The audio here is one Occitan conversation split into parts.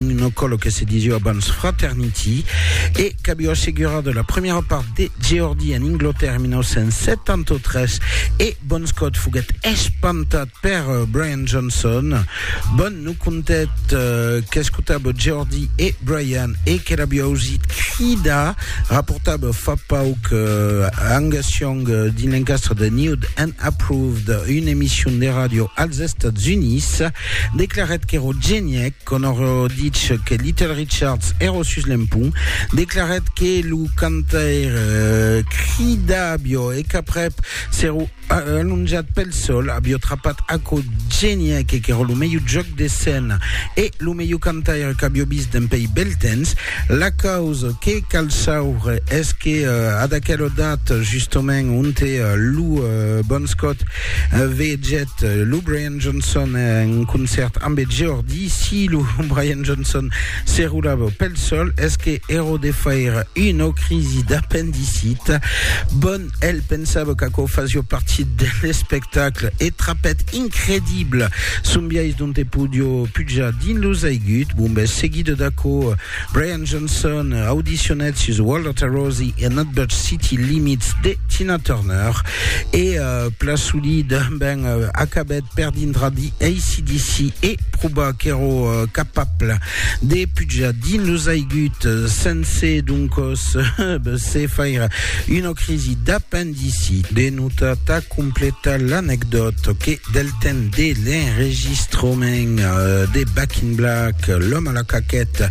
no cò lo que se disiu abans fraternity, e qu'aviu assegurat la premiera part de Geordi en Inglotèrra en 1973, e Bon Scott foguèt espantat per Brian Johnson. Bon no contèt qu'escotava Geordi e Brian e que l'aviu ausit cridar, raportava fa pauc Angus Young dins l'encastre de Nude and Approved, una emission de ràdio als Estats Units, declarèt qu'èra genièc. Conor Oerditch, que Little Richards èro sus l'empont, declarèt que lo cantaire crida avió e qu'aprèp s'èro alonjat pel sòl, avió trapat aquò genièc qu'èro lo melhor jòc de scèna e lo melhor cantaire qu'avió vist dempèi bèl temps. La causa que cal sauvre es que ad aquela data, justament, onte lo Bon Scott vegèt lo Brian. Johnson en concèrt ambe Geordi, si lo Brian Johnson se roulava pel sol, es que ero de faire una crisi d'apendicit. Bon, el pensava qu'aquò fasió partit de l'espectacle e trapèt incredible son biais dont e podió pujar dins los aiguts, bombes, seguida d'aquò, Brian Johnson audicionèt sus Walter Rosie e Nutbush City Limits de Tina Turner e uh, Plasuli ben uh, acabèt per dintrar di ACDC e proba qu'èro uh, capable de pujar dins los aiguts sense doncos se faire una crisi d'apendicitis D'ici de nota tà completar l'anecdòt que del temps de l'enregistrament de Back in Black, L'Homme à la Caquette,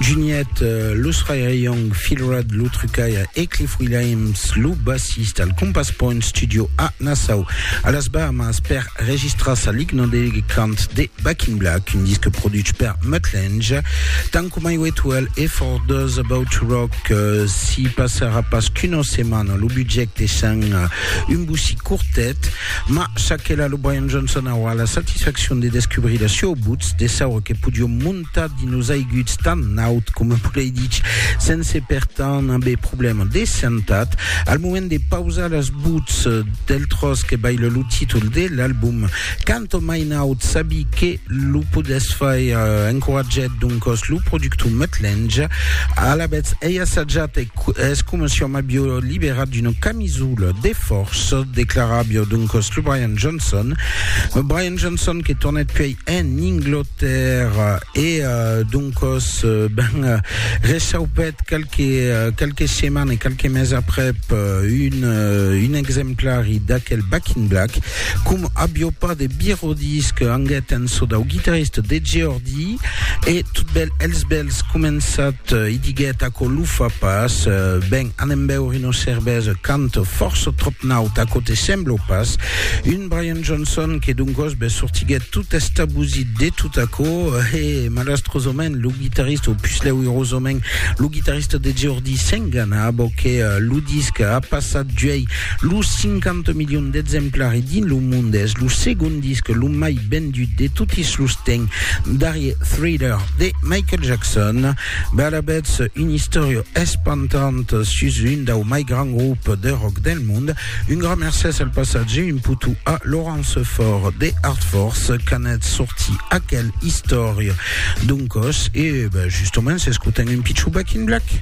Juniet, Los Ray-Ray Young, Phil Rudd, lo trucaire, e Cliff Williams, lo bassista, al Compass Point Studio a Nassau, a las Bahamas, per registrar sa ligna de cant de Back in Black, un disc produch per Mutt Lange, tant coma Highway to Hell e For Those About to Rock. que si passarà pas qu'una setmana lo budget deishant un bocí cortet ma ça que la lo Brian Johnson aurà la satisfaccion de descubrir la sua buts de saure que podiom montar dins los aiguts tan naut coma volei dich sense per tant aver problèma de sentat al moment de pausar las buts del tros que baila lo títol de l'album Canto mai naut sabi que lo podètz faire encoratgèt doncòs lo productor Mutt Lange. Alavetz ei assajat e es coma si òm avió liberat d'una camisola de fòrça, declaravió doncòs lo Brian Johnson. Brian Johnson que tornèt puèi en Inglotèrra e doncòs ben rechaupèt qualques setmanes, qualques mes aprèp un exemplari d'aquel Back in Black. Com avió pas de birodisc, anguèt en çò dau guitarrist de Geordi, e tot bèl els bèls començat, i diguèt, Aquò lo fa pas, ben, anem bèure una cervesa, cant fòrça tròp naut, aquò te sembla pas? Un Brian Johnson que d'un gosbe sortiguèt tot estabusit de tot aquò, e, malastrosament, lo guitarrist, o puslèu irosament, lo guitarrist de Geordi s'enganava que lo disc a passat d'uèi Los 50 milions d'exemplari dins lo mond es lo segond disc lo mai vendut de totis los temps darrier Thriller de Michael Jackson. Balabètz, una istòria espantant sus un dau mai grand grup de rock del mond. Un gran mercès al passatge un potu a Laurence Fort de Art Force qu'anèt sorti aquel istòria d'un còs e ben, justement s'escotem un pichou Back in Black.